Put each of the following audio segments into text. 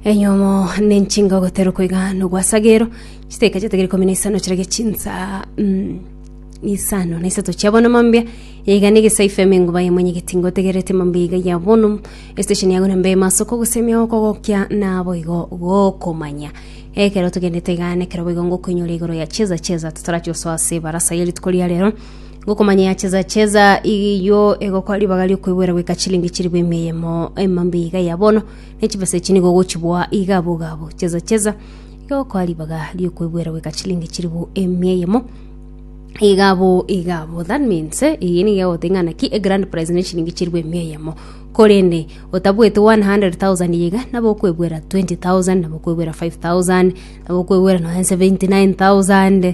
Enyomo nenchinga ogoterwa koiga nogwasagero chiteka chiatagere ikomi na isano chirage chinsa mm, isano na isato chia bono mambia yaiga negesa ifeme nguba yemwenyegeti ngotegerete mambia iga ya bono estation yago nambe masoko gusemia goko gokia nabo igo gokomanya ekero togendete iga nekero boigo ngokoinyora igoro ya cheza cheza totarachia osoa ase barasa ya rituko ria rero Ngokomanya ya cheza-cheza eyio egokora ribaga riokoigwera goika chilingi chilifu emeyemo emambi iga ya bono, ne chibesa echi nigo ogochiboa iga abogabu. Cheza-cheza egokora ribaga riokoigwera goika chilingi chilifu emeyemo iga abo iga abo that means eh, eye nigo egoteba ng'a naki egrand prize ne chilingi chilifu emeyemo korende otabuete 100,000 iga nabo okoegwera 20,000 nabo okoegwera 5,000 nabo okoegwera nonya 79,000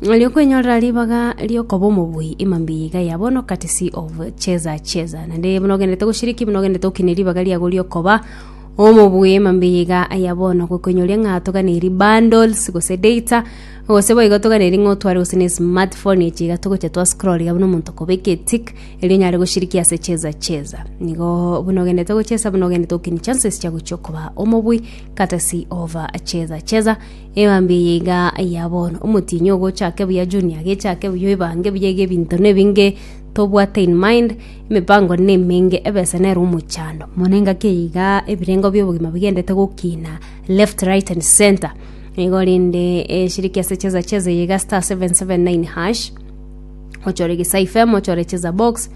Nario kwenyorera ribaga riokoba omobuyi ima mbiya iga ya bono courtesy of cheza cheza naende buna ogenderete goshiriki buna ogenderete gokina ribaga riago riokoba omobuyi ima mbiya iga ya bono gokoinyoria ng'a toganeri bundles gose data gose boigo toganeri ng'a otware gose ne smartphone echi iga togocha twa scroll iga buna omonto okobeka etick erio onyare goshiriki ase cheza cheza nigo buna ogenderete gochesa buna ogenderete gokina chances chia gochia okoba omobuyi courtesy of cheza cheza Ebambe eye iga ya bono, omotienyi ogo ochake buya junior agechake buya oibange buya iga ebinto nebinge tobwate in mind, emepango nemenge, ebesa nero omochando mono engaki eye iga ebirengo bia obogima bigendete gokina left right and centre igo rende eshiriki ase cheza cheza eye iga star 779#, ochore gesa FM ochore cheza box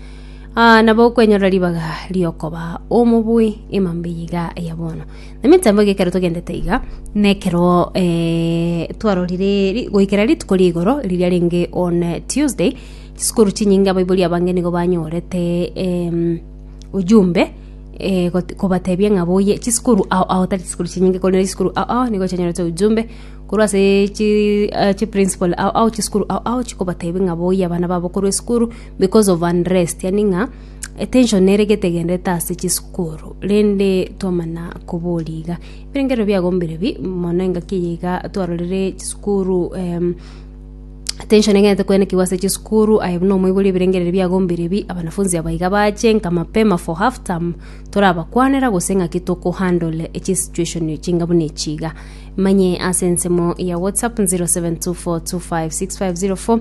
ah, nabo okwenyorera ribaga riokoba omobui emambe eye iga ya bono. Nemetambo ege ekero togendete iga, nekero eh, twarorire ri- goikera rituko rigoro riria renge on eh, Tuesday, chisukuru chinyinge abaibori abange nigo banyorete em, ujumbe eh, got- kobatebia ng'a boye chisukuru ao ao tari chisukuru chinyinge korende chisukuru ao ao nigo chianyorete ujumbe korwa ase chi- eh, chiprincipal ao ao chisukuru ao ao chikobatebia ng'a boiyo abana babo korwa esukuru because of unrest yaani ng'a. Attention nere gete egenderete ase chisukuru rende twamana koboria iga ebirengerero biago mbirebi mono engaki eye iga twarorire chisukuru em attention egenderete koenekiwa ase chisukuru aye buna omoibori ebirengereri biago mbirebi abanafunzi aba iga bache nka mapema for half term torabakwanera gose ng'aki toko handle chisituation chinga buna echi iga manye ase ensemo ya whatsapp zero seven two four two five six five zero four